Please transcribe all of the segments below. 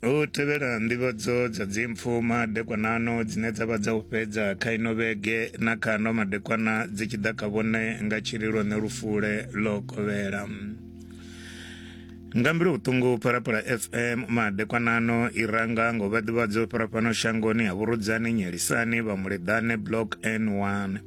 u tevhela nḓivhadzo dza dzimpfu madekwanano dzine dza vha dza u fhedza kha ino vhege na kha ano madekwana dzi tshi ḓa kha vhone nga tshililo ne lufule lo kovhela nga mbilu vhuṱungu phalaphala fm madekwanano i ranga ngo vhaḓivhadzo phalafhano shangoni ha vhurudzani nyelisani vha muleḓane block n1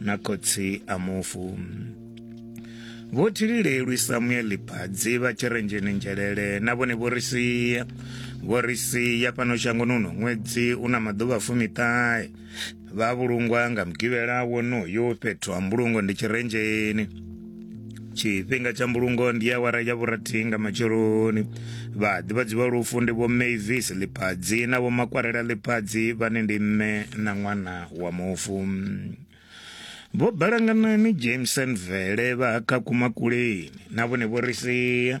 na khotsi a mufu vho thililelwi samueli phadzi vha tshirenzheni nzhelele na vhone vho ri sia vho ri sia fhano shangoni uno ṅwedzi u na maḓuvha fumiṱahe vha vhulungwa nga mugivhela wonoyo fhethu ha mbulungo ndi tshirenzheni tshifhinga tsha mbulungo ndi awara ya vhurathi nga matsheloni vhaḓivhadzi vha lufu ndi vho mavis ḽiphadzi na vho makwarela ḽiphadzi vhane ndi mme na ṅwana wa mufu vho balanganani jameson vele vha ha khakumakuleni na vhone vho ri sia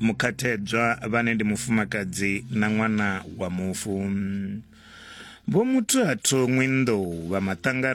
mukhathedzwa vhane ndi mufumakadzi na ṅwana wa mufu. Vho Muthu-a-Thongwe Nḓou vha Maṱangari